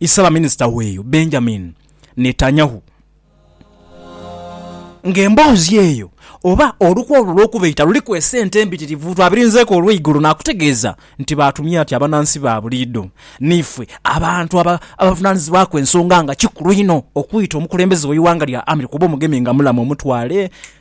Isabaminisita w'eyo Benjamin Netanyahu nga emboozi eyo oba olukwe olwo olw'okubaita luliku esente embitirivu twabirinzeeku olw'eigulo naakutegeeza nti baatumya ati abanansi ba buliidho niifwe abantu abavunaanizibwaku ensonga nga kikulu inho okwita omukulembeze w'eighanga lya America oba omugemi nga mulamu omutwale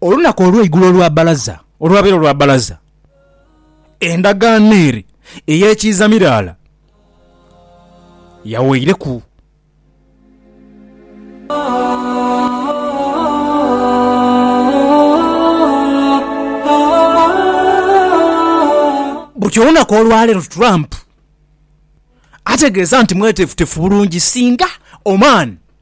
Olunaku olweigulo olwa balaza, olwabeera olwa balaza, endagaano ere ey'ekiiza miraala yaweireku. Buti olunaku olwaleero Trump ategeeza nti mwetefutefu bulungi singa Oman,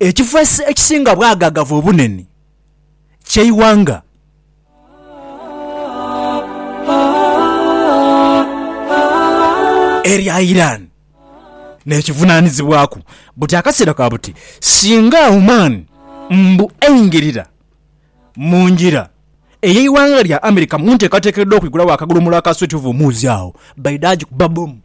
Ekifo ekisinga bwagagavu obunene ky'eighanga. Erya Iran n'ekivunaanizibwaku buti akaseera ka buti singa Oman mbu eingirira. Mu ngira ey'eighanga lya America mu nteekateeka edh'okwigulawo akagulumulu aka Sweet Hove omuuzi agho baidha agikuba bbomu.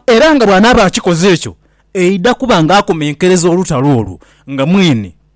Era nga bw'anaaba akikoze ekyo, aidha kuba nga akomenkereza olutalo olwo nga mwene.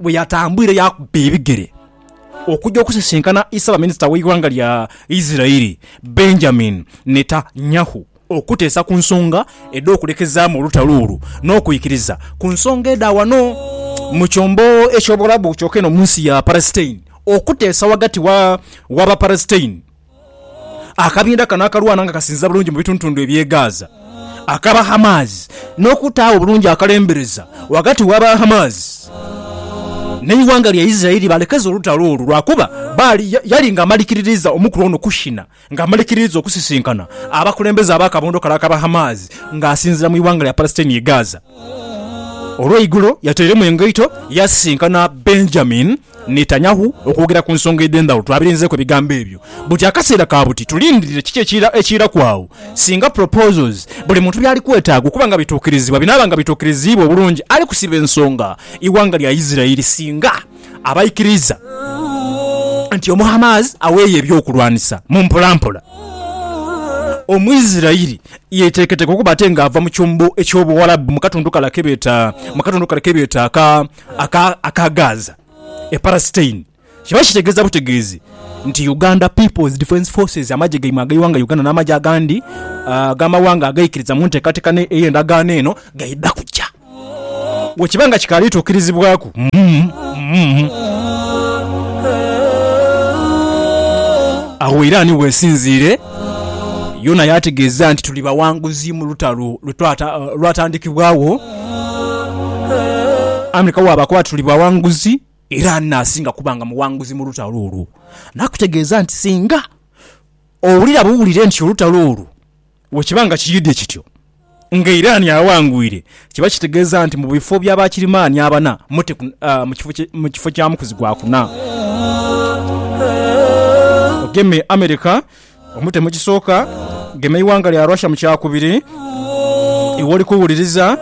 bwe yatambwire yaakuba ebigere okugya okusisinkana Ssaabaminisita w'eighanga lya Isiraeli, Benjamin Netanyahu okuteesa ku nsonga edh'okulekezaamu olutalo olwo n'okwikiriza ku nsonga edha wano mu kyombo eky'Obuwarabu kyoka eno mu nsi ya Palestine okuteesa ghagati wa Bapalestine Akabinda kano akalwana nga kasinziira bulungi mu bitundutundu eby'e Gaza Akabahamas n'okutaawo obulungi akalembereza ghagati w'Abahamas n'eighanga lya Israeli baalekeza olutalo olwo lwakuba Baali yali nga amalikiririza omukulu ono Kushina nga amalikiririza okusisinkana abakulembeze ab'akabondo kale Akabahamas nga asinziira mu ighanga lya Palestine ye Gaza. Olweigulo yateiremu engaito yaasisinkana Benjamin Netanyahu okwogera ku nsonga edh'endhaghulo. Twabirinzeeku ebigambo ebyo buti akaseera ka buti tulindirire kiki ekiiraku agho singa proposals buli muntu by'ali kwetaaga okuba nga bituukirizibwa binaaba nga bituukiriziibwa obulungi. Ali kusiba ensonga ighanga lya Isiraeli singa aba aikiriiza nti omu Hamas aweeyo eby'okulwanisa mu mpolampola omu Isiraeli yeeteeketeeke okuba ate nga ava mu kyombo eky'Obuwarabu mu katundu kale kebeeta mu katundu kale kebeeta aka akagaaza e Palestine kiba kitegeeza butegeezi nti Uganda People's Defence Forces, amagye gaimwe ag'eighanga Uganda n'amagye agandi ag'amawanga agaikiriza mu nteekateeka ey'endagaano eno gaidha kuja bwekiba nga kikaali tuukirizibwaku. Agho Iran w'esinziire. Yona yaategeeza nti tuli bawanguzi mu lutalo lwatandikibwagho. Amerika bw'abaakuba ati tuli bawanguzi, era ani n'asinga kuba nga muwanguzi mu lutalo olwo? Naakutegeeza nti singa owulira buwulire nti olutalo olwo bwe kiba nga kiyidhi kityo, Nga Irani awangwire, kiba kitegeeza nti mu bifo bya Bakirimaani abana, Mute mu kifo kya Mukuzi gwa kuna. Ogeme America, omute mu kisooka. Gema eighanga lya Russia mu kyakubiri. Iwe oli kuwuliriza,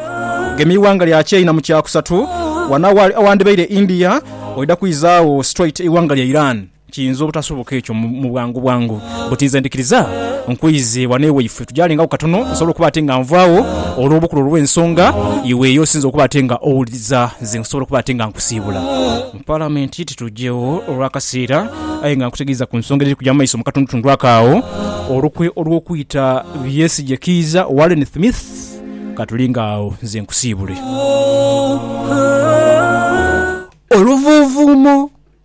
gema eighanga lya China mu kyakusatu. Wano awandibaire India, oidha kwizaagho straight eighanga lya Iran. Kiyinza obutasoboka ekyo mu bwangu bwangu, bbuti nze ndhikiriza nkwiize ghano ewaifwe tugyalengagho katono nsobole okuba ate nga nvaagho olw'obukulu olw'ensonga iwe y'osinze okuba ate nga owuliriza nze nsobole okuba ate nga nkusiibula mu Palamenti titugyegho olw'akaseera aye nga nkutegeeza ku nsonga edhiri kugya mu maiso mu katundutundu ako agho. Olukwe olw'okwita Byesigye Kiiza owa Allen Thmith katulinga agho nze nkusiibule. Oluvuuvuumo.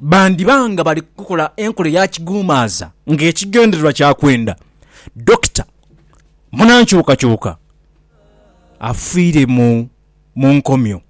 bandiba nga bali kukola enkola eya kiguumaaza ng'ekigendererwa kya kwenda Dokita munankyukakyuka afiire mu nkomyo.